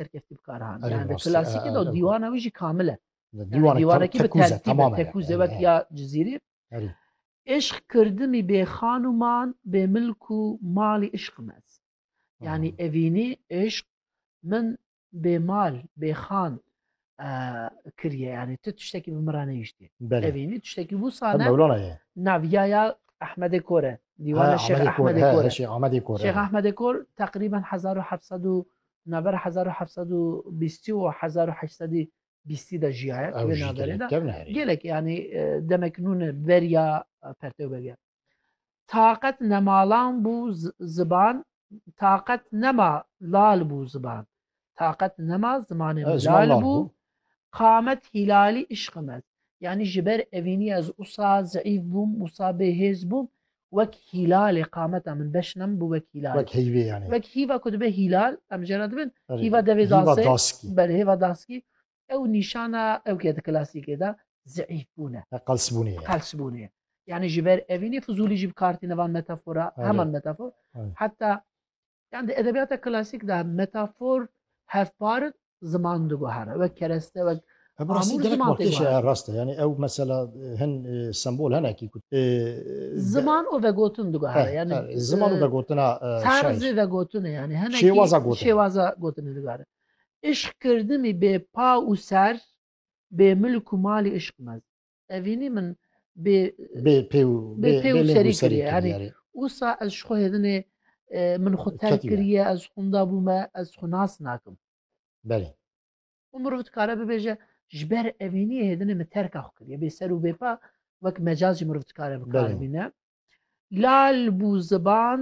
terkeftî bi kar hane. Yani klasikê de dîwana wî jî kamil e. Dîwanekî bi tertîb e tekûze wek ya cizîrî. Îşq kirdimî bê xan û man bê milk û malî îşqim ez. Yani evînî îşq min bê mal bê xan kiriye yani tu tiştekî bi min re nehîştî. Evînî tiştekî wisa ne. Mewlana ye. Naviya ya Ehmedê Kor e. Dîwana Şêx Ehmedê Kor e. Şêx Ehmedê Kor. Şêx Ehmedê Kor teqrîben 1700 Navbera hezar û heft sed û bîstî û hezar û heşt sedî bîstî de jiyaye di vê navberê de. Gelek yanî demek nûne beriya pertewberiya. Taqet nemalan bû ziban taqet nema lal bû ziban. Taqet nema zimanê min lal bû. Qamet hîlalî îşqim ez. Yanî ji ber evînî ez usa zeîf bûm, usa bêhêz bûm. wek hîlalê qameta min beş nam bû wek hîlalê. Wek heyvê yanî. Wek hîva ku dibe hîlal em jê re dibin hîva devê dasê. Belê hêva daskî ew nîşana ew ke di klasîkê de zîîfbûn e. Qelsbûnê ye. Qelsbûnê ye. Yanî ji ber evînê fizûlî jî bi kar tîne van metafora heman metafor heta Yan di edebiyata klasîk de metafor hevpar in, ziman diguhere wek kereste wek Ev rastî Amûr gelek ziman tê balkêşe guhertin. rast e. Yanî ew mesela hin e, sembol hene kî ku e, ziman û vegotin eh, diguhere. Yani eh, ziman û e, vegotina e, şair. terzê vegotinê yani hene kî Şêwaza gotinê. şêwaza gotinê diguhere. Îşq kirdimî bê pa û ser bê milk û malî îşq mez. Evînî min bê pêw serî kiriye herî wisa ez ji xwe hêdinê min xwe ter kiriye ez xunda bûme ez xwe nas nakim Belê û mirov dikare bibêje ji ber evîniyê hêdinê min terka xwe kiriye bê ser û bêpa wek mecaz jî mirov dikare bikaribîne lal bû ziban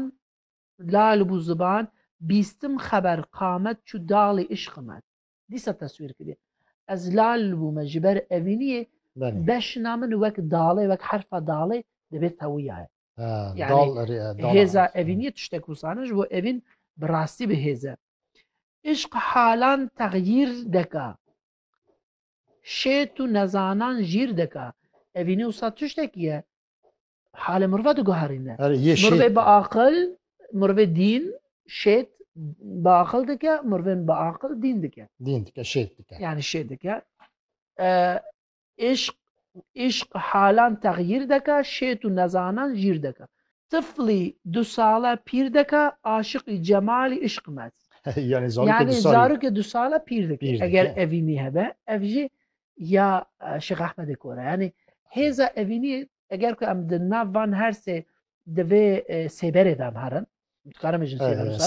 lal bû ziban bîstim xeber qamet çû dalê îşqimet dîsa teswîr kiriye. Ez lal bûme ji ber evîniyê beşna min wek dalê wek herfa dalê dibê tewiya ye. Hêza evîniyê tiştek wusane ji bo evîn bi rastî bi hêze. Îşq halan texyîr deka. Şêt û nezanan jîr deka. Evînî wisa tiştekî ye Halê mirova diguherîne. Mirovê bi aqil, mirovê dîn, şêt bi aqil dike, mirovên bi aqil dîn dike. Dîn dike, şêt dike. Yani şêt dike. Îşq, îşq halan texyîr dike, şêt û nezanan jîr dike. Tiflî du sale pîr dike, aşiqî cemalî îşq met. Yani zarokê du sale pîr dike. Eger evînî hebe, ev jî ya Şêx Ehmedê Kora. Yani hêza evînî Eger ku em di nav van her sê di vê sêberê de em herin dikarim bêjin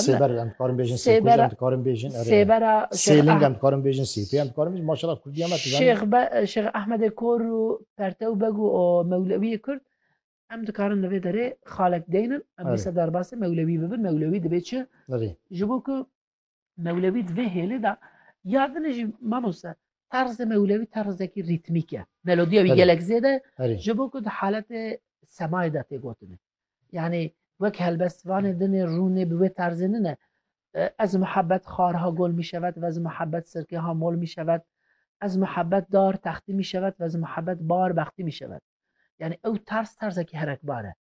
sêber em dikarim bêjin sêkuj em dikarim bêjin sêbera sêling em dikarim bêjin sêpê em dikarim bêjin maşallah kurdî me şêx şêx Ahmedê Kor û Pertew Beg û Mewlewiyê Kurd em dikarin li vê derê xalek deynin em bî sedarbasê Mewlewî bibin Mewlewî dibê çi ji bo ku Mewlewî di vê hêlê de ya din jî mamose terzê mewlewî terzekî rîtmîk e. Melodiya wî gelek zêde ji bo ku di haletê semayê de tê gotine. Yanî wek helbestvanê dinê rûnê bi wê terzê nine. Ez muhebet xar ha gol mî şevet vez muhebet sirkê ha mol mî şevet. Ez muhebet dar textî mî şevet vez muhebet bar bextî mî şevet. Yani ew tarz terzekî herekbar e.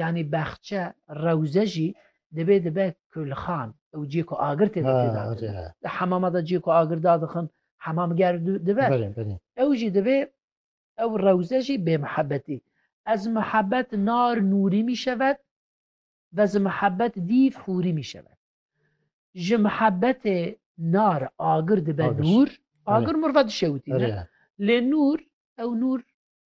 Yanî Bexçe, Rewze jî divê dibe kulxan. Ew ciyê ku agir tê de têda kirin. Di hemama de ciyê ku agir dadixin hemamger dibe. Ew jî divê ew rewze jî bêmihebetî. Ez mihebet nar nûrî mîşevet ve zi mihebet dîv hûrî mîşevet. Ji mihebetê nar agir dibe nûr. Agir mirve dişewitîne. Lê nûr ew nûr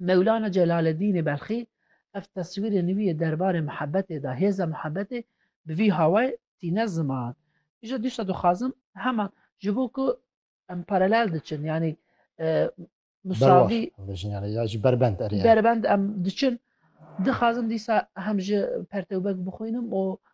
Mewlana Celaleddînê Belxî ev teswîrê nivî yê derbarê muhebetê da, hêza muhebetê bi vî hawayê tîne ziman. Îje dîsa dixwazim heman ji bo ku em paralel diçin yanî musavî berbend em diçin, dixwazim dîsa hem ji pertewbek bixwînim û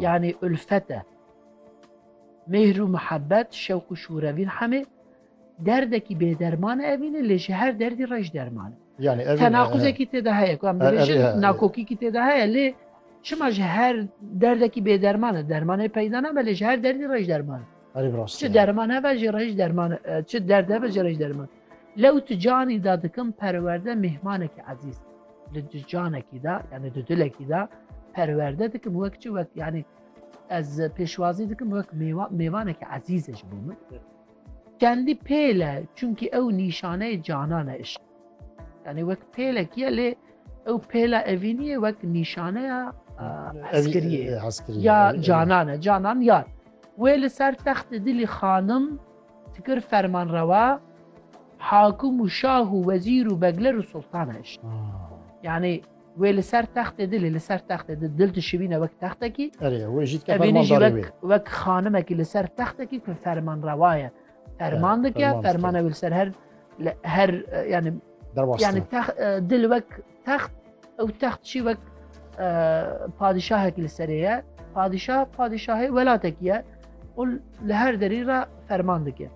Yani ülfet e. Mêhr û mihebbet, şewq û şûrevîn hemê derdekî bêderman e evîne lê ji her derdî rej derman e. Yani evîne. Tenaquzekî tê de heye ku em dibêjin nakokîkî tê de heye lê çima ji her derdekî bêderman e dermanê peyda nabe lê ji her derdî rej derman e. Çi derman heve jî rej derman çi derd heve jî rej derman. Lew tu canî da dikim perwerde mêhmanekî ezîz. Li tu canekî da yanî tu dilekî da perwerde dikim wek çi wek yanî ez pêşwazî dikim wek mêvanekî ezîze ji bo min. Kendî pêle çunkî ew nîşaneyê canan e îşq. Yanî wek pêlekî ye lê ew pêla evînî ye wek nîşaneya hezkiriyê ya canan e canan yar. Wê li ser textê dilî xanim Ti kir fermanrewa hakim û şah û wezîr û begler û sultan hişt. Yanî wê li ser textê dilê li ser textê di dil dişibîne wek textekî evînî jî wek wek xanimekî li ser textekî ku fermanrewa ye ferman dike fermane wê li ser her her yanî yani dil wek Text ew text çî wek padîşahek li serê ye. Padîşah padîşahê welatekî ye û li her derî re ferman dike.